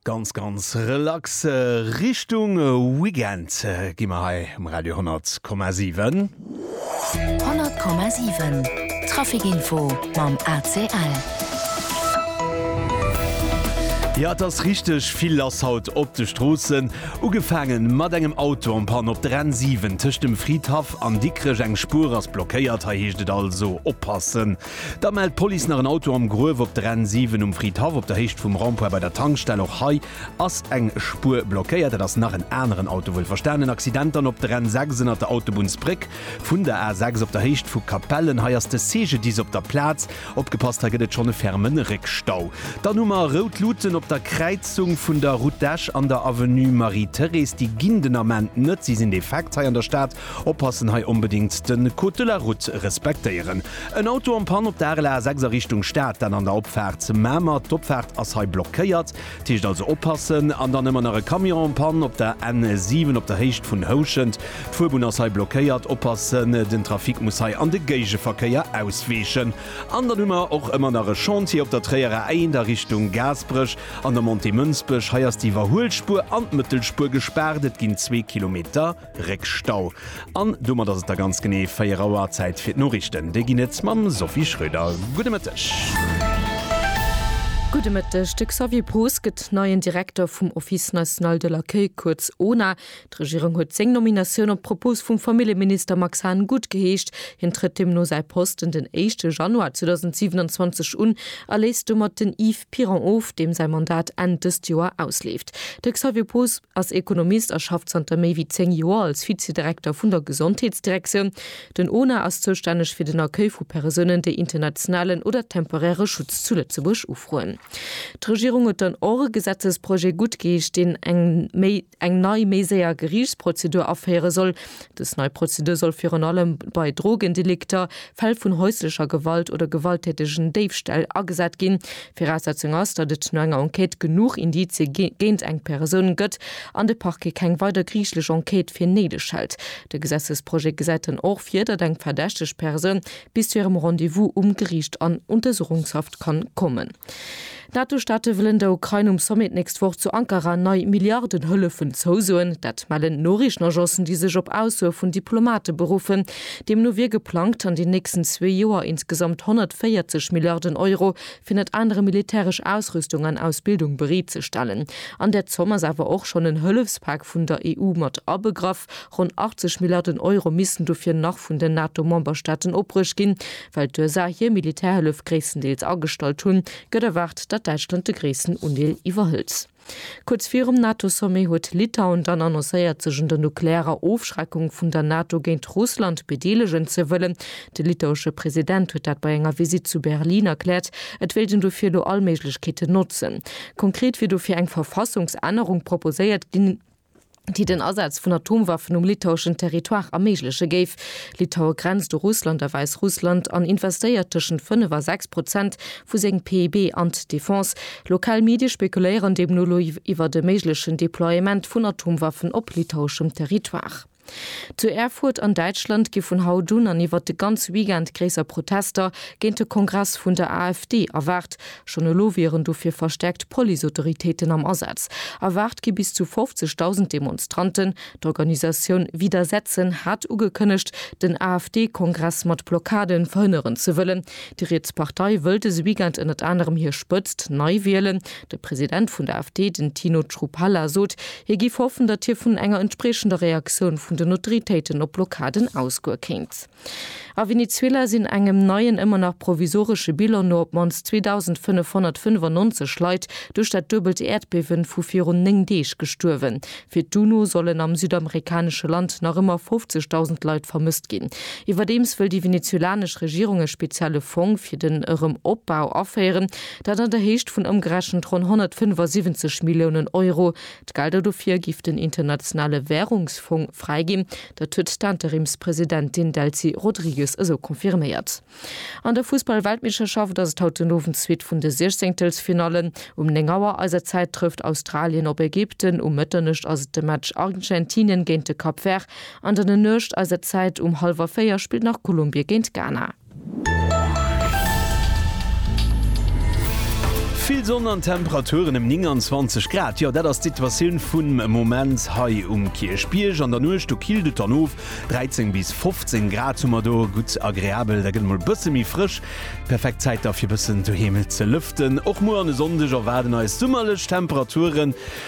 Ganz ganz relax Richtung Weekend gi mer hei um Radio 10,7. 10,7 Trafikinfo mam ACL. Jo et ass richteg vill lass haut op de Stroossen. Ugefaangen mat engem Auto an Panne op der N7 tëscht dem Fridhaff an Dikrech. Eng Spuer ass blockéiert, hei heescht et also oppassen. Da mellt d'Police nach en Auto am Gruef op der N 7 um Fridhaff op der Héicht vum Rond-Point bei der Tankstell. Och hei ass eng Spuer blockéiert. Dat ass nach en aneren Auto wuel verstanen. En Accident dann op der N 6 ënnert der Autobunnsbréck vun der A 6 op der Héicht vu Capellen. Hei ass de CGDIS op der Plaz. Opgepasst, hei gëtt et schonn e ferme Réckstau. Dann hu mer rout Luten op der Kräizung vun der Route d'Esch an der Avenue Marie-Thérèse. Déi ginn den Ament net, si sinn defekt hei an der Stad. Oppassen hei, onbedingt den Code de la Route respektéieren. En Auto en Panne op der RL A 6 a Richtung Stad, dann an der Opfaart zu Mamer. D'Opfaart ass hei blockéiert, dat heescht also oppassen. An dann ëmmer nach e Camion en Panne op der N 7 op der Héicht vun Houschent. D'Fuerbunn ass hei blockéiert, oppassen, den Trafic muss hei an de Géigeverkéier ausweechen. An dann hu mer och ëmmer nach e Chantier op der Tréier A 1 a Richtung Gaasperech an der Montée Mënsbech. Hei ass d'Iwwerhuelspuer an d'Mëttelspur gespaart, et ginn zwee Kilometer Réckstau. An domat ass et da ganz genee 4 Auer. Zäit fir d'Noriichten. Déi ginn et mam Sophie Schröder. Gudde Mëtteg. Gudde Mëtteg. De Xavier Poos gëtt neien Direkter vum Office national de l'accueil, kuerz ONA. D'Regierung huet seng Nominatioun op Propos vum Familljeminister Max Hahn gutt geheescht. Hien trëtt deemno säi Posten den éischte Januar 2027 un a léisst domat den Yves Piron of, deem säi Mandat Enn dëst Joer ausleeft. De Xavier Poos. ass Ekonomist a schafft zanter méi wéi 10 Joer als Vizedirekter vun der Gesondheetsdirektioun. Den ona ass zoustänneg fir den Accueil vu Persounen, déi internationalen oder temporäre Schutz zu Lëtzebuerg ufroen. D'Regierung huet dann och e Gesetzesprojet guttgeheescht, deen eng méi eng nei, méi séier Geriichtsprozedur aféiere soll. Dës nei Prozedur soll virun allem bei Drogendelikter, Fäll vun häuslecher Gewalt oder gewalttätegen Déifställ agesat ginn. Viraussetzung ass, datt et no enger Enquête genuch Indizie géint eng Persoun gëtt an de Parquet keng weider griichlech Enquête fir néideg hält. De Gesetzesprojet gesäit dann och vir, datt eng verdächteg Persoun bis zu hirem Rendez-vous um Geriicht an Untersuchungshaft kann kommen. D'Nato-Staate wëllen der Ukrain um Sommet d'nächst Woch zu Ankara nei Milliardenhëllefen zousoen. Dat mellen Noriichtenagencen, déi sech op Aussoe vun Diplomate beruffen. Deemno wier geplangt, an den nächsten zwee Joer insgesamt 140 Milliarden Euro fir ënnert anerem militäresch Ausrüstung an Ausbildung bereet ze stellen. An där Zomm ass awer och schonn en Hëllefspak vun der EU mat abegraff. Ronn 80 Milliarden Euro missten dofir nach vun den NATO-Memberstaaten opbruecht ginn. Well d'USA hir Militärhëllef gréisstendeels agestallt hunn, gëtt erwaart, datt Däitschland de gréissten Undeel iwwerhëlt. Kuerz virum NATO-Sommet huet Litauen dann annoncéiert, sech un der nuklearer Ofschreckung vun der NATO géint Russland bedeelegen ze wëllen. De litauesche President huet dat bei enger Visitt zu Berlin erkläert, et wéilt een dofir elo all Méiglechkeeten notzen. Konkret wier dofir eng Verfassungsännerung proposéiert ginn. déi den Asaz vun Atomwaffen um litaueschen Territoire erméigleche géif. Litaue grenzt u Russland a Wäissrussland an investéiert tëschent 5 a 6 Prozent vu sengem PIB an d'Defense. Lokal Medie spekuléieren deemno elo iwwert e méiglechen Deploiement vun Atomwaffen op litaueschem Territoire. Zu Erfurt an Däitschland gi vun haut un an iwwert de ganze Weekend gréisser Protester géint de Kongress vun der AfD erwaart. Schonn elo wieren dofir verstäerkt Policeautoritéiten am Asaz. Erwaart gi bis zu 50.000 Demonstranten. D'Organisatioun Widersetzen hat ugekënnegt, den AfD-Kongress mat Blockade verhënneren ze wëllen. Déi riets Partei wëll dëse Weekend ënnert anerem hir Spëtzt nei wielen. De President vun der AfD, den Tino Chrupalla, sot, hie géif hoffen, datt hie vun enger entspriechender Reaktioun vun den Autoritéiten op d'Blockaden ausgoe kéint. A Venezuela sinn engem neien, ëmmer nach provisoresche Bilan no op d'mannst 2.595 Leit duerch dat duebelt Äerdbiewen vu virun 9 Deeg gestuerwen. Fir d'UNO sollen am südamerikanesche Land nach ëmmer 50.000 Leit vermësst ginn. Iwwerdeems wëll déi venezuelanesch Regierung e spezielle Fong fir den Erëm-Opbau aféieren. Dat an der Héicht vun ëmgerechent ronn 175 Milliounen Euro. D'Gelder dofir giff den Internationale Wärungsfong fräiginn. Dat huet d'Interimspresidentin Delcy Rodrigues esou confirméiert. An der Fussball-Weltmeeschterschaft ass et haut den Owend d'Suite vun de Siechzehntel's-Finallen. Um 9 Auer eiser Zäit trëfft Australien op Ägypten, um Mëtternuecht ass et de Match Argentinien géint de Cap Vert an dann en Nuecht eiser Zäit um hallwer 4 spillt nach Kolumbie géint Ghana. Vill Sonn an Temperaturen ëm 29 Grad, jo dat ass d'Situatioun vum Moment hei um Kierchbierg. An der Nuecht do killt et dann of, 13 bis 15 Grad hu mer do, gutt agreabel, da gëtt et mol e bësse méi frësch. Perfekt Zäit da fir e bëssen doheem ze lëften. Och muer an e Sonndeg erwaarden eis summerlech Temperaturen.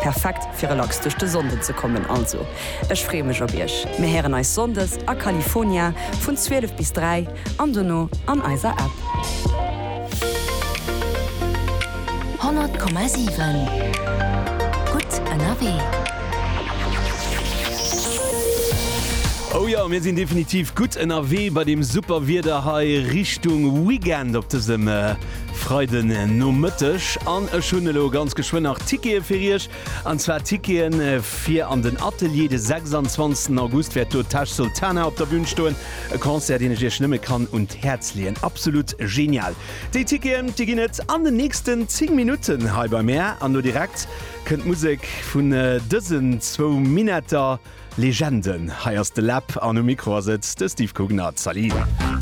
Perfekt fir relax duerch de Sonnden ze kommen, also ech freeë mech op iech. Mir héieren eis Sonndes a California vun 12 bis 3 an dono an eiser App. 100,7 gutt ënnerwee. Oh jo, mir sinn definitiv gutt ënnerwee bei deem super Wieder hei Richtung Weekend op dësem. Freiden Nomëtteg an ech hunn elo ganz geschwënn nach Tickete fir Iech. An zwar Tickete fir an den Atelier. De 26 August wäert do d'Tash Sultana op der Bün stoen. E Concert, deen ech Iech nëmme kann un d'Häerz leeën. Absolut genial! Déi Ticketen, déi ginn et an den nächsten 10 Minutten hei bei mär. An elo direkt kënnt d'Musek vun dësen zwou Minetter Legenden. Hei ass de Läb an um Mikro ass et de Steve Cugner. Salut!